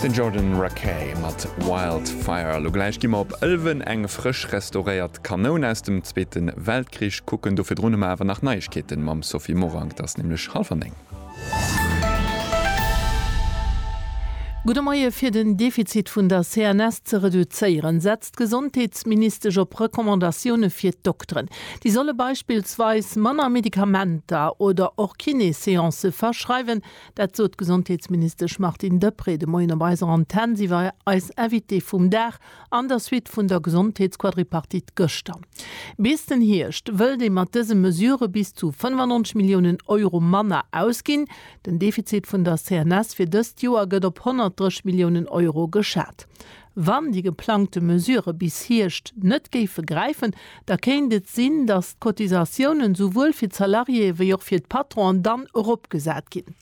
Den Jordan Rakei mat Wild Fire. Lo gläich gi mer op Ëlwen eng frësch restauréiert Kanoun aus dem Zweete Weltkrich kucken. Do virdrun hu mer awer nach Neiegkeeten mam Sophie Morang. Et ass nämlech hallwer néng. Gudde Moie, Fir den Defizit vun der CNS ze reduzéieren, setzt d'Gesondheetsministesch op Recommandatioune fir d'Dokteren. Déi solle beispillsweis manner Medikamenter oder och Kiné-Seancë verschreiwen, Dat sot d'Gesondheetsministesch Martine Deprez de Moien op eiser Antenn. Si war eis Invitée vum Dag an der Suite vun der Gesondheetsquadripartite gëschter. Bis den Hierscht wëllt ee mat dëse Mesurë bis zu 95 Milliounen Euro manner ausginn. Den Defizit vun der CNS fir dëst Joer gëtt op 130 Milliounen Euro geschat. Wann déi geplangte Mesurë bis Hierscht net géife gräifen, da kéint et sinn, datt d'Cotisatiounen esouwuel fir d'Salariéë wéi och fir d'Patronen dann eropgesat ginn.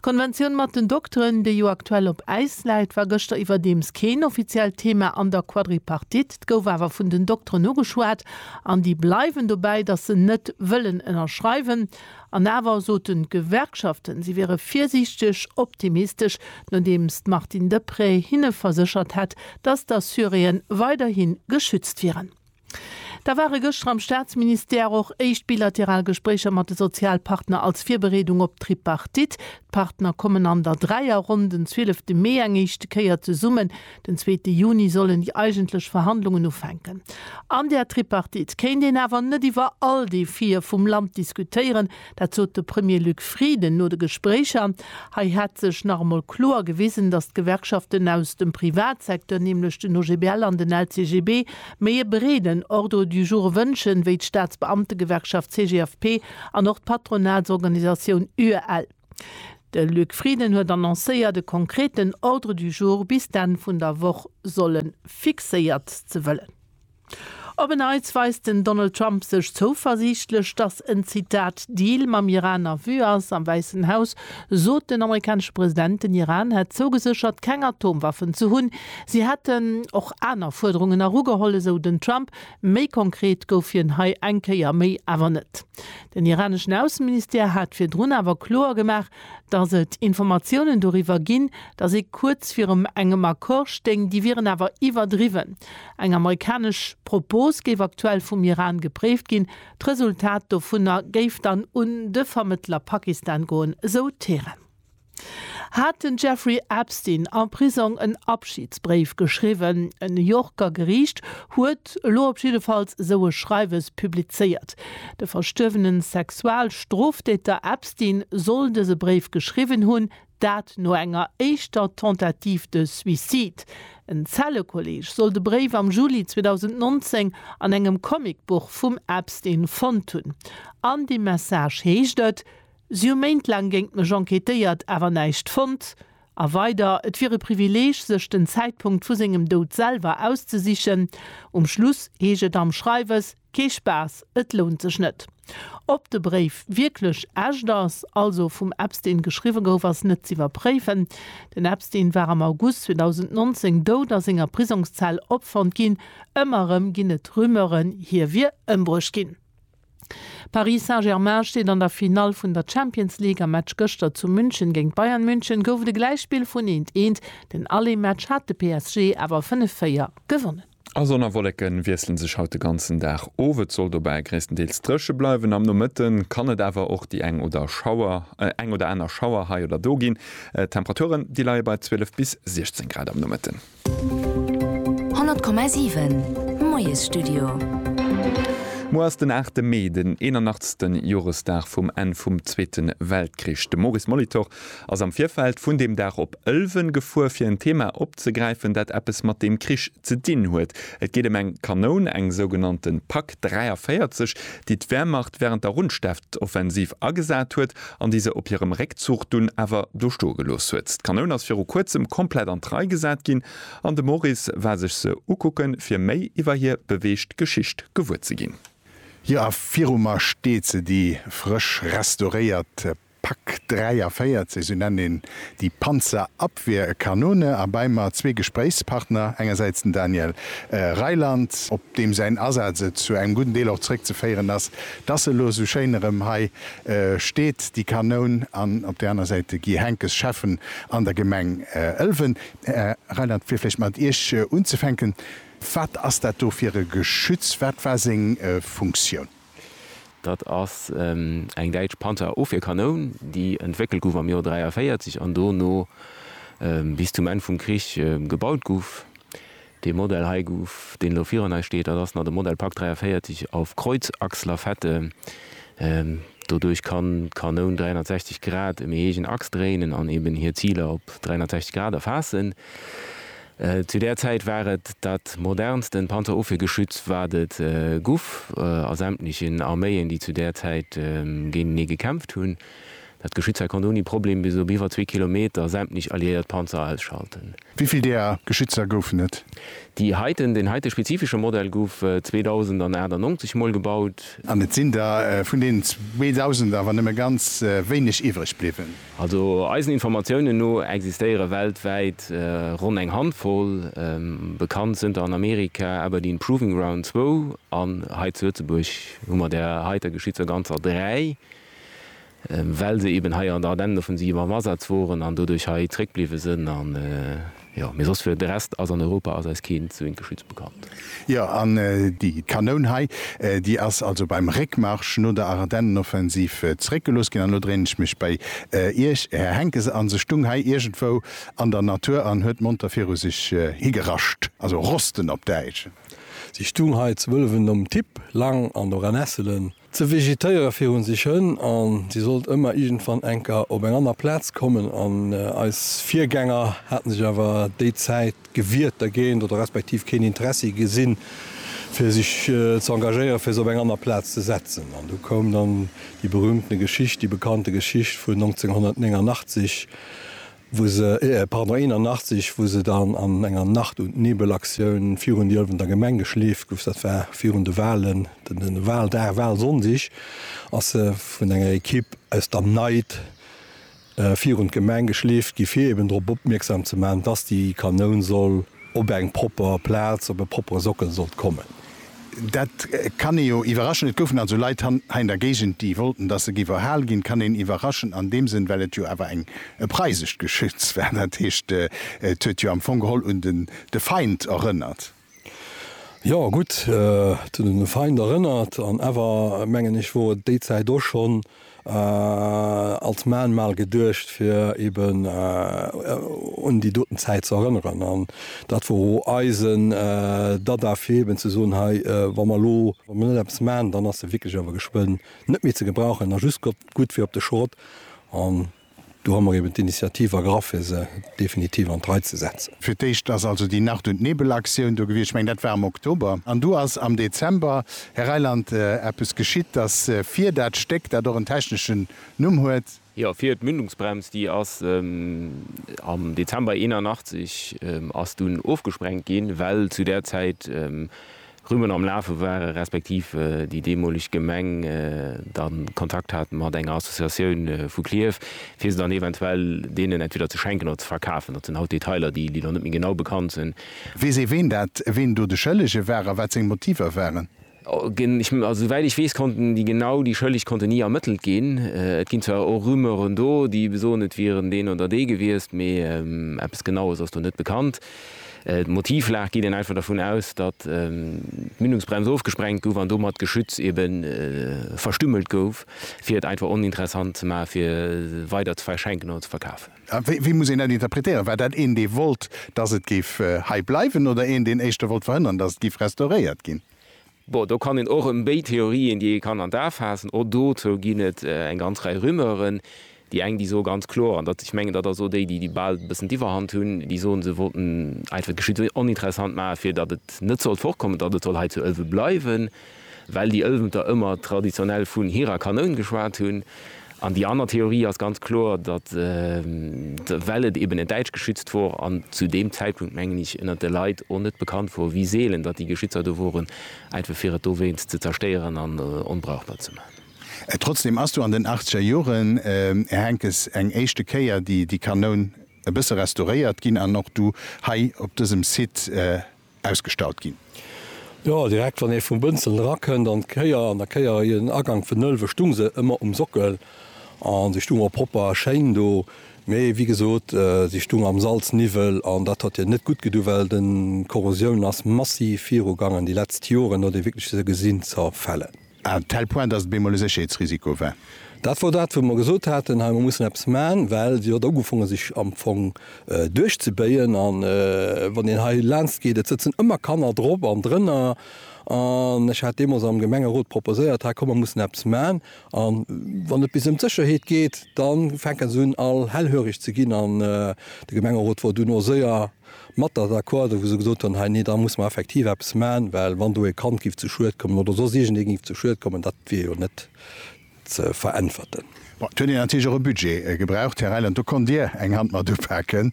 D'Konventioun mat den Dokteren, déi jo aktuell op Äis läit, war gëschter iwwerdeems keen offiziellt Thema an der Quadripartite. Et gouf awer vun den Dokteren ugeschwat an déi bleiwen dobäi, datt se net wëllen ënnerschreiwen. An awer soten d'Gewerkschaften, si wiere virsiichteg optimistesch, nodeems d'Martine Deprez hinne verséchert hätt, datt d'Assuréen weiderhi geschützt wieren. Da ware gëschter am Staatsministère och éischt bilateral Gespréicher mat de Sozialpartner als Virbereedung op d'Tripartite. D'Partner kommen an der Dräierronn den 12 de Mee eng éischte Kéier zesummen. Den zweete Juni sollen déi eigentlech Verhandlungen ufänken. An där Tripartite kéint een awer net iwwer all Defie vum Land diskutéieren. Dat sot de Premier Luc Frieden no de Gespréicher. Hei hätt sech nach emol kloer gewisen, datt d'Gewerkschaften aus dem Privatsecteur, nämlech den OGBL an den LCGB, méi e breeden Ordre du jour wënschen, wéi d'Staatsbeamtegewerkschaft CGFP an och d'Patronatsorganisatioun UEL. De Luc Frieden huet annoncéiert, e konkreten Ordre du jour bis d'Enn vun der Woch solle fixéiert ze wëllen. Op e Neits weist den Donald Trump sech zouversiichtlech, datt en Zitat Deal mam Iran a Vue ass. Am Wäissen Haus sot den amerikanesche President, den Iran hätt zougeséchert, keng Atomwaffen ze hunn. Si hätten och aner Fuerderungen erugeholl, esou den Trump. Méi konkret gouf hien hei eng Kéier méi awer net. Den iraneschen Ausseministère hat virdrun awer kloer gemaach, datt et Informatiounen doriwwer ginn, datt ee kuerz virum engem Accord stéing. Déi wieren awer iwwerdriwwen. Eng amerikanesch Propos géif aktuell vum Iran gepréift ginn. D'Resultat dovunner géif dann un de Vermëttler Pakistan goen, esou Teheran. Hat den Jeffrey Epstein am Prisong en Abschidsbréif geschriwwen? E New Yorker Geriicht huet elo op jiddefalls esou e Schreiwes publizéiert. De verstuerwene Sexualstroftäter Epstein soll dëse Bréif geschriwwen hunn, dat no enger éischter Tentative de suicide. En Zellekolleeg soll de Bréif am Juli 2019 an engem Comicbuch vum Epstein fonnt hunn. An deem Message heescht et, Si hu méintlaang géingt mech enquêtéiert, awer näischt fonnt. A weider, Et wier e Privileeg, sech den Zäitpunkt vu sengem Doud selwer auszesichen. Um Schluss heescht et am Schreiwes, Kee Spaass, et lount sech net. Ob de Bréif wierklech echt ass, also vum Epstein geschriwwe gouf, ass net z'iwwerpréifen. Den Epstein war am August 2019 dout a senger Prisongszell opfonnt ginn. Ëmmer erëm ginn et Rumeuren, hie wier ëmbruecht ginn. Paris Saint-Germain steet an der Finall vun der Champions League. Am Match gëschter zu München géint Bayern München gouf et e Gläichspill vun eent, eent. Den Aller-Match hat de PSG awer 5, 4 gewonnen. A Sonn a Wolleke wiessle sech haut de ganzen Dag of. Et soll dobäi gréisstendeels dréche bleiwen. Am Nomëtte kann et awer och déi eng oder Schauer, eng oder aner Schauer hei oder do ginn. D'Temperaturen, déi leie bei 12 bis 16 Grad am Nomëtten. 100,7 Moiesstudio. Muer ass den 8 de Mee, den 81. Joresdag vum Enn vum Zweete Weltkrich. De Maurice Molitor ass am Virfeld vun deem Dag op Ëlwen gefuer, fir en Thema opzegräifen, dat eppes mat deem Krich ze dinn huet. Et geet ëm eng Kanoun, eng sougenannte Pak 43, déi d'Wehrmacht wärend der Rundstedtoffensiv agesat huet an déi se op hirem Réckzuch dunn awer do stoe gelooss huet. D'Kanoun ass viru kuerzem komplett an d'Rei gesat ginn an de Maurice war sech se ukucke fir méi iwwer hir beweegt Geschicht gewuer ze ginn. Jo, a viru mer steet se, déi frësch restauréiert Pak 43, sou nennt een déi Panzerabwehrkanone, a bei mer zwee Gespréichspartner, engersäits den Daniel Reiland, op deem säin Asaz et zu engem gudden Deel och zeréckzeféieren ass, dass elo sou schéin erëm hei steet déi Kanoun an op där aner Säit de Guy Henckes, Schäffen an der Gemeng Ëlwen. Här Reinert, fir vläicht mat Iech unzefänken, wat ass dat do fir e Geschütz, wat war seng Funktioun? Dat ass eng däitsch Panzerofwierkanoun, déi entwéckelt gouf am Joer 43 an dono bis zum Enn vum Krich gebaut gouf. Dee Modell hei gouf, deen elo virun eis steet, dat ass nach de Modell Pak 43 auf Kreuzachslafette. Doduerch kann d'Kanoun 360 Grad ëm ee eegen Achs dréinen an eben hir Ziler op 360 Grad erfaassen. Zu där Zäit war et dat modernsten Panzerofwiergeschütz, wat et guff a sämtlechen Arméien, déi zu där Zäit géintenee gekämpft hunn. Dat geschitt zwar, konnt ouni Problem bis op iwwer zwee Kilometer sämtlich alliéiert Panzer ausschalten. Wivill deeër Geschützer goufen et? Déi heiten, deen heite spezifische Modell gouf 2098 mol gebaut. An et sinn der vun deenen 2000 awer nëmme ganz wéineg iwwreg bliwwen. Also eisen Informatiounen no existéiere weltwäit ronn eng Handvoll, bekannt sënter an Amerika, Aberdeen Proving Ground zwou, an hei zu Lëtzebuerg hu mer der heiter Geschützer ganzer dräi, well se eben hei an der Ardennen offensiv am Asaz woren an doduerch hei zréckbliwwe sinn an jo mee soss fir de Rest ass an Europa ass eis keen zweent Geschütz bekannt. Jo an déi Kanoun hei déi ass also beim Réckmarsch no der Ardennenoffensiv zréckgelooss ginn an elo dréinen ech mech bei Iech Här Henckes an se stung hei iergendwou an der Natur an huet monter viru sech higerascht, also rosten op Däitsch. Se stung hei zu Wëllwen nom Tipp, Lang an och an Esselen Ze vegetéiere fir hunn sech Hënn an si sollt ëmmer iergendwann enker op eng anner Plaz kommen an eis Virgänger haten sech awer déi Zäit gewiert dergéint oder respektiv keen Interessi gesinn fir sech ze engagéiere fir se op eng anner Plaz ze setzen. An du koum dann déi berühmtene Geschicht, déi bekannte Geschicht vun 1989, wou se, pardon, 81, wou se dann an enger Nacht und Nebel Aktioun virun déi Ëlwenner Gemeng geschleeft gouf, dat war virun de Wahlen, de Wahldag, Wahlsonndeg, ass se vun enger Ekipp aus der Neit virun d'Gemeng geschleeft gi fir eben drop opmierksam ze maachen, dass déi Kanoun soll op eng propper Plaz, op e proppere Sockel sollt kommen. Dat kann ee jo iwwerraschen. Et goufen also Leit hei an der Géigend, déi wollten, dass se géif erhal ginn. Kann een iwwerraschen an deem Sënn, well et jo awer eng e preisescht Geschütz war. Dat heescht, et huet jo am Fong geholl un den de Feind erënnert. Jo, gutt, et huet un de Feind erënnert an awer, mengen ech, wor et déi Zäit och schonn als Mahnmal geduecht fir eben un déi doten Zäit ze erënneren. An dat wor o eisen Dada fir eben ze soen, hei wa mer elo, wa mer net eppes man, dann ass se wierklech awer geschwënn net méi ze gebrauchen a just gutt fir op de Schrott. Do hu mer eben d'Initiativ ergraff, fir se definitiv an d'Rei ze setzen. Fir d'éischt ass also déi Nacht und Nebel Aktioun do gewiescht, ech mengen, dat war am Oktober. An du ass am Dezember, Här Reiland, eppes geschitt, dass fir dat Stéck, dat och en techneschen Numm huet, Jo, fir d'Mündungsbrems, déi ass am Dezember 81 ass dunn ofgesprengt ginn, well zu där Zäit, Rümmen am Lafe ware respektiv déi deemoleg Gemeng dann Kontakt hat mat enger Associatioun vu Klierf, fir se dann eventuell deenen entweder ze schenken oder ze verkafen. Dat sinn haut Detailer, déi lo net méi genau bekannt sinn. Weess ee, ween dat, ween do de Schëllege war a wat seng Motiver waren? Also souwäit ech weess, konnten déi genau déi Schëlleg konnten ni ermëttelt ginn. Et ginn zwar och Rumeuren do, déi besoen, et wieren deen oder dee gewiescht, mee eppes Genaues ass do net bekannt. D'Motivlag geet een einfach dervun aus, datt d'Mündungsbrems ofgesprengt gouf an domat d'Geschütz ebe verstümmelt gouf, fir et einfach oninteressant ze maachen, fir weider ze verschenken oder ze verkafen. A wéi muss een dat interpretéieren? War dat een, dee wollt, datt et géif hei bleiwen, oder een, deen éischter wollt verhënnern, datt et géif restauréiert ginn? Bon, do kann een och ëm béid Theorien, déi ee kann an d'A faassen. Och dozou ginn et eng ganz Rei Rumeuren. Déi eng, déi soe ganz kloer, an dat, ech mengen, dat ass och déi, déi bal e bëssen d'Iwwerhand hunn, déi soen, se wollten einfach d'Geschicht esou oninteressant maachen, fir datt et net sollt fortkommen, datt et soll hei zu Ëlwen bleiwen, well déi Ëlwenter ëmmer traditionell vun hirer Kanoun geschwat hunn. An déi aner Theorie ass ganz kloer, datt well et eben en däitsch Geschützt wor an zu deem Zäitpunkt, mengen ech, ënnert de Leit och net bekannt wor, wéi seelen datt déi Geschützer do woren, einfach fir et dowéinst ze zerstéieren an onbrauchbar ze man. Trotzdem ass do an den achtzeger Joren, Här Henckes, eng éischte Kéier déi Kanoun e bësse restauréiert ginn an och du hei op dësem Site, ausgestallt ginn. Jo, direkt wann ee vum Bënzelen erakënnt an d'Kéier, an der Kéier ier den Agank vun Nolwe stung se ëmmer um Sockel a se stung och propper a schéin do. Mee wéi gesot, se stung am Salzniwwel an dat huet hir net gutt gedu well d'Korrosioun ass massiv virugaangen déi letzt Joren no de wierkleche Gesinzerfälle. À un tel point, dass et bemol e Sécherheetsrisiko war. Dat wor dat, wou mer gesot haten, hei, mer mussen eppes man, well si huet ugefonge sech am Fong duerchzebéien. A wann een hei laanscht geet, et sëtzen ëmmer Kanner drop an drënner. An ech hat deemools am Gemengerot proposéiert, hei, komm, mer mussen eppes man. A wann et bis ëm d'Sécherheet geet, da fänke se un, all hellhöreg ze ginn. An de Gemengerot wor duerno séier. mat der d'accord, wou se gesot hunn, hei, nee, da muss mer effektiv eppes maachen, well wann do e Kand giff zu Schued kommen oder soss iergendee giff zu Schued kommen, dat wier jo net ze veräntwerten. Bon, et huet een natierlech och e Budget gebraucht, Här Reiland, do konnt Dir eng Hand mat upaken,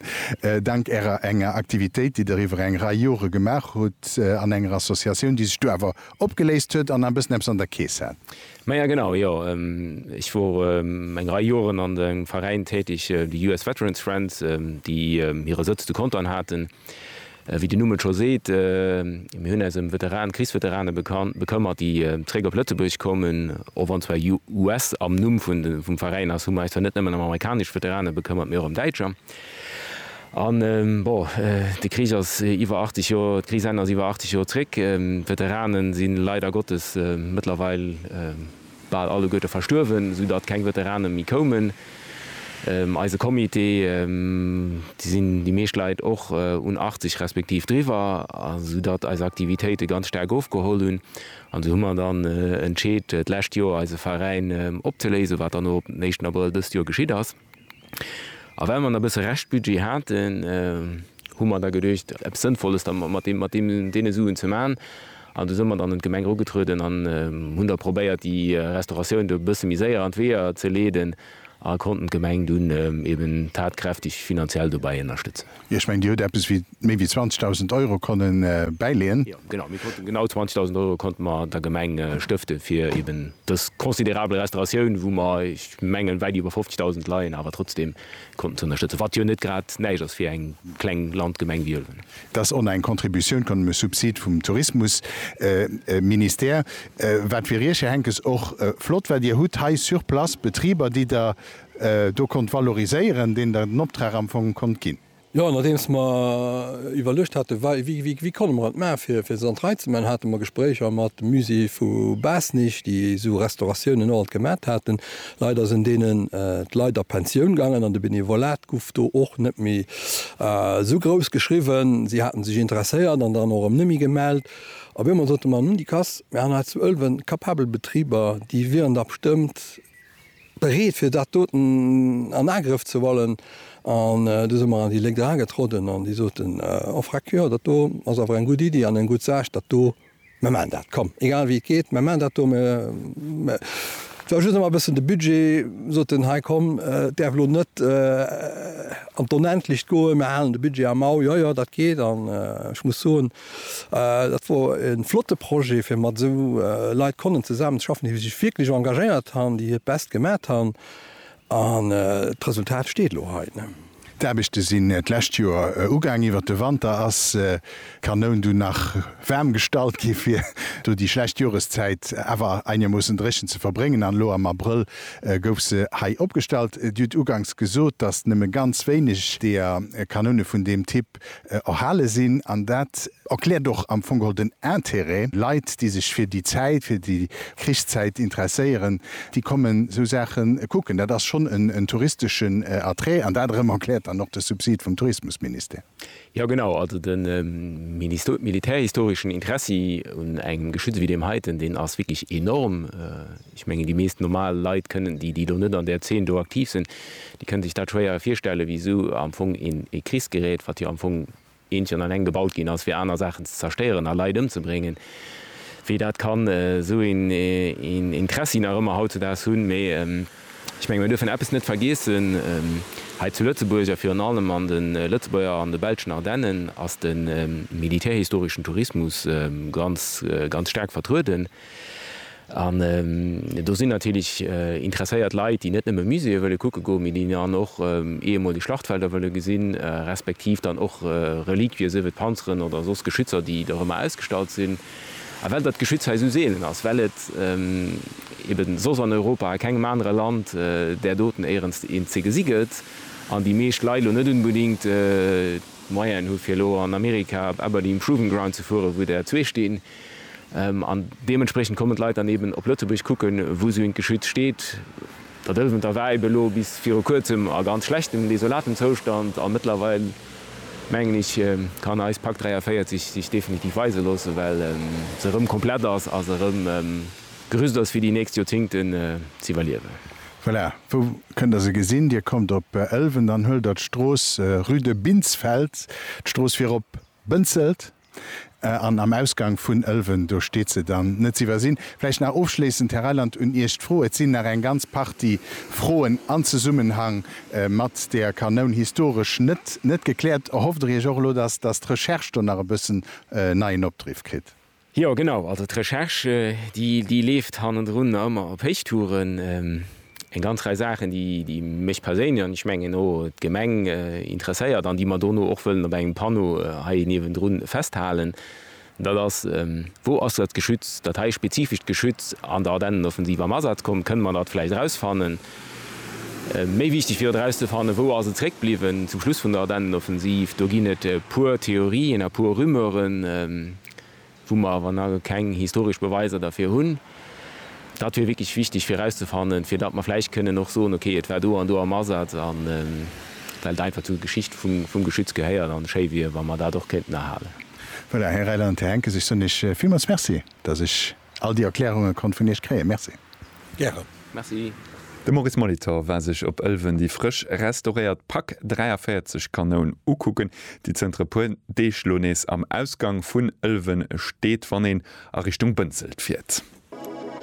dank Ärer enger Aktivitéit, déi Der iwwer eng Rei Jore gemaach hutt an enger Associatioun, déi sech du awer opgeléist huet an nach e bëssen eppes an der Keess hat. Maja genau, jo ech wor eng Rei Joeren an engem Veräin täteg, de US Veterans Friends, déi hire Sëtz zu Contern haten. Wéi den Numm et scho seet, mir hunn äis ëm Veteranen, Krichsveteranen bekëmmert, déi zréck op Lëtzebuerg kommen. Och wann zwar US am Numm vum Veräin ass, hu mer äis zwar net nëmmen ëm amerikanesch Veterane bekëmmert, mee och ëm däitscher. An, bon, de Krich ass iwwer 80 Joer, d'Krichsenn ass iwwer 80 Joer zréck. D'Veteranen si leider Gottes mëttlerweil bal alleguerte verstuerwen, sou datt keng Veteranen méi koumen. Eise Comité, do sinn déi meescht Leit och un 80 respektiv driwwer, sou datt eis Aktivitéite ganz staark ofgeholl hunn. An esou hu mer dann entscheet, d'lescht Joer eise Veräin opzeléisen, wat dann och op den éischten Abrëll dëst Joer geschitt ass. A well mer nach e bësse Reschtbudget haten, hu mer da geduecht, eppes Sënnvolles da mat deem, mat deem, deene Suen ze maachen. An du si mer dann un d'Gemeng erugetrueden an hunn da probéiert, déi Restauratioun do e bësse méi séier an d'Weeër ze leeden a konnten d'Gemeng dunn eben tatkräfteg finanziell dobäi ënnerstëtzen. Jo, ech mengen, Dir hutt eppes wéi méi wéi 20.000 Euro konne bäileeën. Jo, genau, mir konnten genau 20.000 Euro konnte mer der Gemeng stëfte fir eben dës considerabel Restauratioun, wou mer, ech mengen, wäit iwwer 50.000 leien, awer trotzdeem konnten ze ënnerstëtzen, wat jo net grad näischt ass fir eng kleng Landgemeng wéi Ëlwen. Et ass en eng Contribution konnt, e Subsid vum Tourismusministère, wat, fir Iech, Här Henckes, och flott war. Dir hutt hei sur place Betriber, déi Der do konnt valoriséieren, deen Der den Optrag am Fong konnt ginn. Jo, nodeems mer iwwerluecht hate wei, wéi, wéi konne mer et maachen, fir, fir se an d'Rei ze man, hate mer Gespréicher mat dem Musée vu Baasnich, déi esou Restauratiounen och alt gemat haten. Leider sinn deenen d'Leit a Pensioun gaangen an de Benevolat guff do och net méi esou grouss geschriwwen. Si haten sech interesséiert an dann och erëm net méi gemellt. A wéi mer soten, mer hunn déi Kass, mer han hei zu Ëlwen kapabel Betriber, déi wieren da bestëmmt Bereet fir dat doten an Agrëff ze huelen. An du si mer an déi Lénk eragetrodden an déi soten, Oh Freck, jo, dat do ass awer eng gutt Iddi an eng gutt Saach, dat do, mir maachen dat, komm, egal wéi et geet, mir maachen dat do. Mir, et war just emol e bëssen de Budget, sot en, hei, komm, et däerf elo net an d'Onendlecht goen, mir halen de Budget am Au. Jo, jo, dat geet an ech muss soen, Dat wor e flotte Projet fir mat esou Leit konnen zesaammen ze schaffen, déi sech wierklech engagéiert han, déi hiert Best gemat han an d'Resultat steet elo hei. D'Aarbechte sinn d'lescht Joer ugaang. Iwwert de Wanter ass d'Kanoun dunn nach waarm gestallt gi fir do déi schlecht Joreszäit awer einermoossen dréchen ze verbréngen an elo am Abrëll gouf se hei opgestallt. Dir hutt uganks gesot, datt nëmme ganz wéineg deeër Kanoune vun deem Typ Prinzip erhale sinn. An dat erkläert och am Fong geholl den Intérêt. Leit, déi sech fir déi Zäit, fir déi Krichszäit interesséieren, déi kommen esou Saache kucken. Dat ass schonn en touristeschen Attrait. An dat erëm erkläert dann och de Subsid vum Tourismusministère. Jo, genau. Also de militärhistoreschen Interessi un engem Geschütz wéi deem heiten, deen ass wierklech enorm. Ech mengen, déi meescht normal Leit kënnen, déi do net an där Zeen do aktiv sinn, déi kënne sech dat schwéier virstellen, wéi esou am Fong ee Krichsgerät, wat jo am Fong eent an alleng gebaut ginn ass, fir aner Saachen ze zerstéieren a Leit ëmzebréngen, wéi dat kann esou een Interessi nach ëmmer hautzedaags hunn. Mee ech mengen, mir duerfen eppes net vergiessen, Hei zu Lëtzebuerg a virun allem an de Lëtzebuerger an de belschen Ardennen ass de militärhistoreschen Tourismus ganz, ganz staark vertrueden. An do sinn natierlech interesséiert Leit, déi net nëmme Muséeë wëlle kucke goen, mee déi dann och ehemoleg Schlachtfelder wëlle gesinn, respektiv dann och Reliquië, sief et Panzeren oder soss Geschützer, déi der ëmmer ausgestallt sinn. A well dat Geschütz hei esou seelen ass, well et ebe soss an Europa a kengem anere Land där doten éierenst eent ze gesi gëtt, an déi meescht Leit elo net unbedingt d'Moyenen hu fir elo an Amerika op Aberdeen Proving Ground ze fueren, wou der zwee stinn, An deementspriechend kommen d'Leit dann eben op Lëtzebuerg kucken, wou sou eent geschützt steet. Der Dëlwenter war eben elo bis viru kuerzem a ganz schlechtem, desolatem Zoustand a mëttlerweil, mengen ech, kann eis Pak 43 sech definitiv weise loossen, well se erëm komplett ass a se erëm gerüst ass, fir déi nächst Joerzéngten z'iwwerliewen. Voilà, wou kënnt Der se gesinn? Dir kommt op Ëlwen, dann huelt Der d'Strooss, rue de Binsfeld, d'Strooss fir op Bënzelt. An am Ausgang vun Ëlwen, do steet se dann, net ze iwwersinn. Vläicht nach ofschléissend, Här Reiland, un Iech d'Fro, et sinn nach eng ganz Partie Froen an Zesummenhang mat der Kanoun historesch net, net gekläert. Erhofft Der Iech och elo, dass, dass d'Recherche do nach e bëssen neien Opdriff kritt? Jo, genau. Also d'Recherche, déi, déi leeft hannendrun ëmmer op Héichtouren. Eng ganz Rei Saachen, déi mech perséinlech, an ech mengen och d'Gemeng, interesséiert an déi mer dono och wëllen op engem Panneau hei niewendrun festhalen, dat ass, Wou ass dat Geschütz, dat hei spezifescht Geschütz an der Ardennenoffensiv am Asaz komm? Kënne mer dat vläicht erausfannen? Méi wichteg wier et erauszefannen, Wou ass et zréckbliwwen zum Schluss vun der Ardennenoffensiv? Do ginn et e puer Theorien a puer Rumeuren. wou mer awer nach keng historesch Beweiser derfir hunn, dat wier wierklech wichteg fir erauszefannen, fir datt mer vläicht kënnen och soen, okay, et war do an do am Asaz, a well et einfach zu der Geschicht vum Geschütz gehéiert an schéi wier, wa mer dat och kéinten erhalen. Voilà, Här Reyland, Här Henckes, ech soen Iech villmools Merci, datt ech all déi Erklärunge konnt vun Iech kréien. Merci. Gären. Merci. De Maurice Molitor war sech op Ëlwen déi frësch restauréiert Pak 43 Kanoun ukucken, déi zënter e puer Deeg lo nees am Ausgang vun Ëlwen steet, wann een a Richtung Bënzelt fiert.